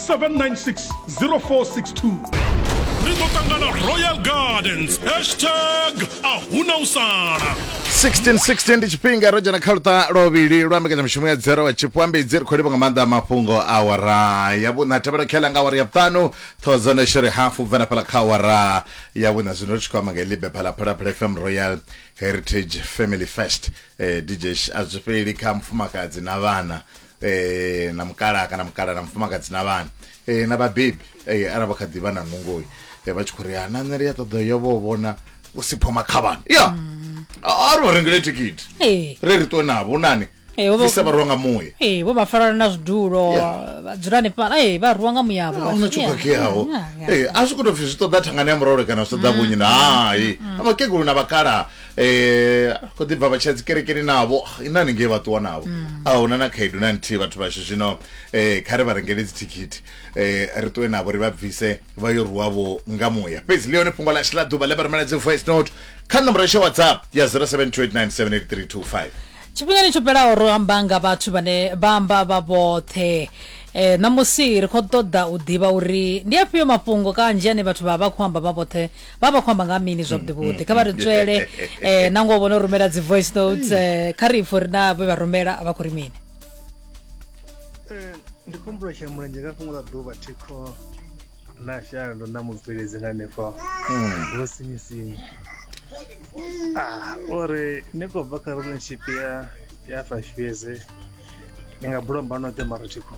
7960462 ri ḓo ṱangana royal gardens hashtag a huna u sala 1616 ndi tshifhinga ro dzhena kha luṱa lwovhili lwa mbekanyamushumo ya dzero wa tshipwambedzi ri khou livha nga maanḓa a mafhungo a wara ya vhuṋa tevhela khela nga awara ya vhuṱanu thousand shere hafu bvela fhala kha awara ya vhuṋa zwino ri tshi khou amba nga libe phala phalaphala fm royal heritage family fest eh, dj a zwi fheli kha mufumakadzi na vhana eh, na mukalaha kana mukalaha na mufumakadzi na vhana eh, na vhabebi eh, arali vha kha ḓi vha na nungoyi eh, vha tshi khou ri ha na nṋe ri a ṱoḓa yo vho vhona u si phoma khavhana ya a ri vha rengele thikhithi Ee. ri ri ṱwe navho nani Ee, vho vha- bvisa vharuwa nga muya ee vho vha farana na zwidulo Yeah. vha dzula hanefhala ee vha rwiwa nga muyavho a huna tsho khakheaho Eh, a zwi khou tou pfi zwi ṱoḓa thangani ya murole kana zwi ṱoḓa vhunyi na hai vhakegulu na vhakalaha eh ko ḓi bva vha tsha dzikerekeni navho ina ni ngei vha ṱuwa navho mm. a huna na khaedu na nthihi vhathu vhashu zwino eh kha ri vha rengele dzithikhithi eh ri ṱuwe navho ri vha bvise vha yo ruwa vho nga muya fhedzi ḽi hone fhungo ḽashu ḽa ḓuvha ḽe vha rumela dzi voice note kha nomboro yashu whatsapp ya 0728978325 tshifhingani tsho fhelaho ro amba nga vhathu vhane vha amba vha vhoṱhe eh ṋamusi ri khou ṱoḓa u ḓivha uri ndi afhio mafhungo kanzhi ane vhathu vha vha khou amba vha vhoṱhe vha vha khou amba nga mini zwavhuḓi vhuḓi kha vha ri ntswele um na ngoho vhono rumela dzi voice notes um kha ri ipfo ri na vhe vha rumela a vha khou ri mini ndi khombulo tsha mulenzhe nga fhungo ḽa ḓuvha thikho na shalo na mubveledzi nga hanefho vho sinyisinya uri ni khou bva kha relationship ya ya fashiyeze ndi nga bula mba noṱhe mara tshikho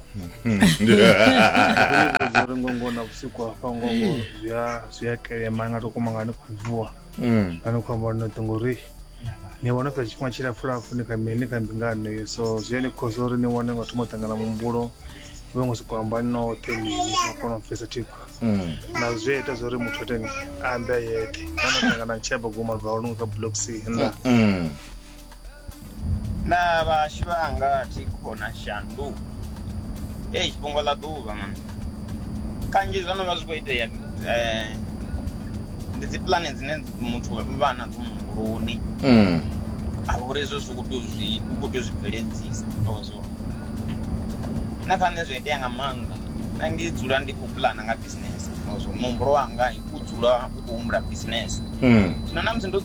uri ngongo na vhusiku hafha ngongo zwi a zwi a kelema nga to koma nga ni khou vuwa Mm. nga ni khou amba noṱhe ngori ni vhona fhedza tshifhinga tshilapfu lapfu ni kha mi- ni kha mbingano iyo so zwi a ni khosa uri ni wane nga thoma u ṱangana muhumbulo ni vha ngo sokou amba noṱhe mini na kona u pfesa thikho Mm. na zwi a ita zwa uri muthu ateni a ambe a yeṱhe kana ṱangana tsheba goma bva hone nga block c nda Mm. Naa vhahashu vha anga thikho na shandu ei fhungo ḽa ḓuvha man kanzhi zwo no vha zwi khou itea eh, ndi dzi pulane dzine muthu vha nadzo muhumbuloni mm. a uri hezwo zwi khou zwi khou tea u zwi bveledzisa ozwo na kha nṋe zwi itea nga maanḓa na ndi dzula ndi khou pulana nga bisinese ozwo muhumbulo wanga u dzula u khou humbula bisinese mm. zwino na musi ndo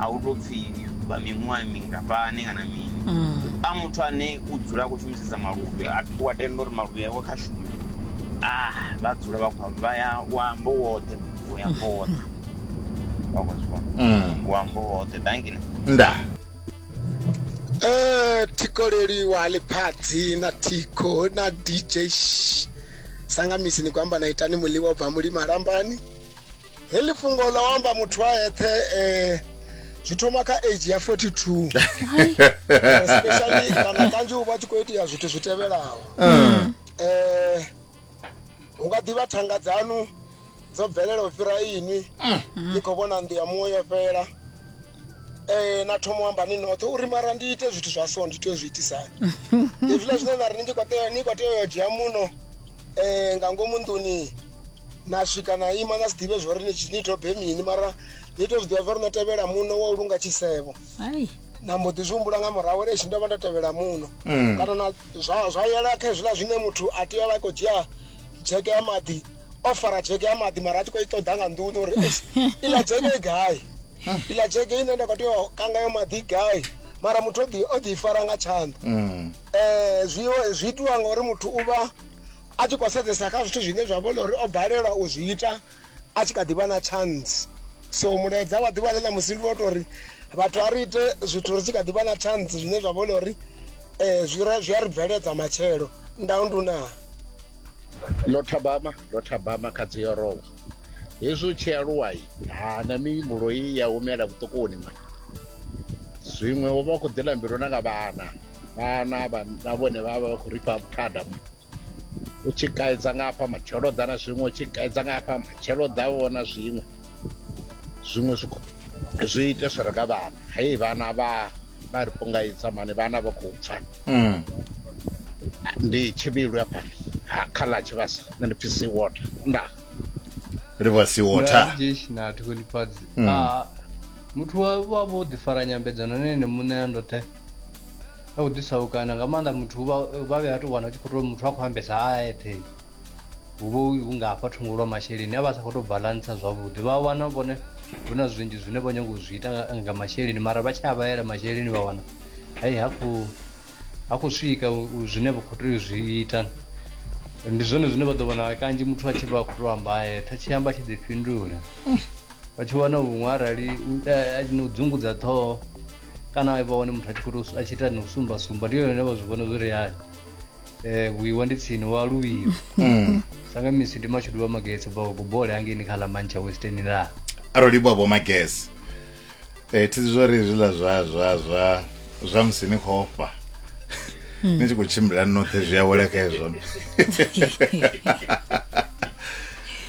a hu tou pfhi vha miṅwaha mingafhani kana mini a muthu ane u dzula a khou shumisesa maluvhi a wa tenda uri maluvhi awe kha shume a vha dzula vha khou vha ya u amba u woṱhe u ya amba u woṱhe wa khou zwi vhona Mm. u amba u woṱhe dangile nda Eh, thiko leliwa liphatsi na thiko na dj Shh. sangamisi ni ku amba na itani muḽiwa u bva mulima lambani heḽi fhungo ḽa u amba muthu a eṱhe um zwi thoma kha age ya 42 especially kana kanzhi u vha tshi khou itea zwithu zwi tevhelaho um hu nga ḓivha thanga dzanu dzo bvelela u fhira inwi ni khou vhona nnḓu ya muṅwe yo fhela um na thoma u amba ni noṱhe uri mara ndi ite zwithu zwa so ndi tea u zwi itisani hezwiḽa zwine na ri ni tshi khou tea ni khou tea u yo dzhia muno um nga ngomu nḓuni na swika na ima na si ḓivhe zwo ri ni dobe mini mara ni to zwi ḓivha zwa ri no tevhela muno wa u lunga tshisevho na mbo ḓi zwi humbula nga murahu uri tshi ndo vha ndo tevhela muno mm. kana na zwa yela kha hezwiḽa zwine muthu a tea vha khou dzhia dzheke ya maḓi o fara dzheke ya maḓi mara a tshi khou i ṱoḓa nga nḓuni uri iḽa dzheke i gai mm. iḽa dzheke ine nda khou tea kanga yo maḓi gai mara muthu o ḓi fara nga tshanḓa mm. Zwi zwi itiwa ngauri muthu u vha a tshi khou sedzesa kha zwithu zwine zwa vhona uri o balelwa u zwi ita a tshi kha ḓi vha na chance so mulaedza wa ḓuvha ḽe na musi ndi wa tou ri vhathu a ri ite zwithu ri tshi kha ḓi vha na chance zwine zwa vhona uri um zwi a ri bveledza matshelo ndau ndunaa lothabama lothabama kha dzi yorowa hezwi u tshi aluwa ha na mihumbulo i ya humela vhuṱukuni ma zwiṅwe u vha u khou ḓila mbilu na nga vhana vhana na vhone vha vha vha khou ri fha vhuthada u tshi kaidza nga hafha matshelo ḓa na zwiṅwe u tshi kaidza nga hafha matshelo ḓa vhona zwiṅwe zwiṅwe zwi zwi ite zwi re nga vhana hei vhana vha vha ri pungaidza mani vhana vha khou pfa mm. ndi tshivhilu ya fhano kha ḽa tshivhasa nṋe ndi pfi sea water nda ri vha sea water na thikhulifhadzi mm. ah, muthu wa vha vho ḓifara nyambedzano na ene muṋe a ndoṱhe na u ḓisaukana nga maanḓa muthu vha vha vhe a tou wana u tshi khou tou muthu a khou ambesa a eṱhe hu vha hu nga hafha thungo lwa masheleni a vha sa khou tou balantsa zwavhuḓi vha wana vhone hu na zwinzhi zwine vho nyanga u zwi ita nga- nga masheleni mara vha tshi a vhaela masheleni vha wana hai ha khou ha khou swika u- u zwine vha khou tea u zwi ita ndi zwone zwine vha ḓo wana kanzhi muthu a tshi vha a khou tou amba a eṱhe tshi amba tshi ḓifhindula vha tshi wana huṅwe arali u- a- a- na u dzungudza ṱhoho kana vha wane muthu a tshi khou a tshi ita ni u sumba sumba ndi yone vha zwi vhona zwi ri hani eh vhuiwa ndi tsini wa luvhiwa mm. sanga misi ndi mashudu wa magese ba kubole hangeni kha la mancha western la aroli bwa bo magese eh thi zwo ri zwi la zwa zwa zwa zwa musi ni khofa hmm. ni tshi khou tshimbila noṱhe zwi a wela kha ezwo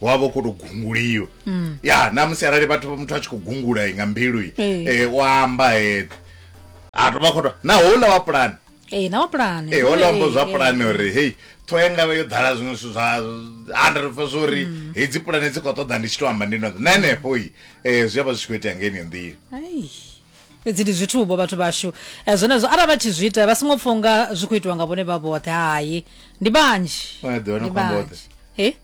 wa vha u khou tou gunguliwa mm. ya namusi arali vhathu muthu a tshi khou gungula nga mbilu hey. e, eh, wa amba he a tou vha khou tou na houḽa wa pulani ee na wa pulani ee houḽa wambo zwa pulani uri hei ṱhoho yanga vha yo ḓala zwiṅwe zwithu zwa hundred fa zwo uri mm. hedzi pulani dzi khou ṱoḓa ndi tshi tou amba ndi noṱhe na henefho i um zwi a vha zwi tshi khou itea nga enio nḓila fhedzi ndi zwithu vho vhathu vhashu eh, zwenezwo arali vha tshi zwi ita vha songo pfha unga zwi khou itiwa nga vhone vha vhoṱhe hai ndi vhanzhi ndi vhanzhi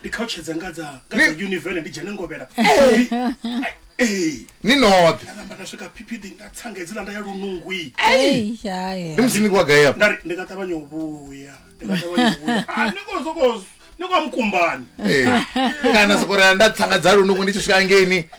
ndi khautshedza nga dza nga dza Ni- univele ndi dzhene ngovhela ee ni noṱhe nda namba nda swika phiphiḓi nda tsanga hedzila nda ya lunungwi Ei, hai. ndi musi ni kwa gai afho nda ri ndi nga ṱavhanya u vhuya ndi nga ṱavhanya u vhuya Ah, ni khou sokou- ni khou mukumbani Eh, kana sokorea nda tsanga dza lunungu ndi tshi swika ngeni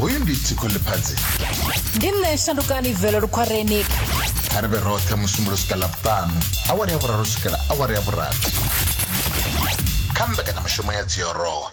hoyu ndi tsiko ḽiphadzi ndi nṋe shandukani velo lukhwareni kha ri vhe roṱhe musumbulo swika ḽavhuṱanu awara ya vhuraru swikela awara ya vhurathi kha mbekanyamishumo ya dziorowa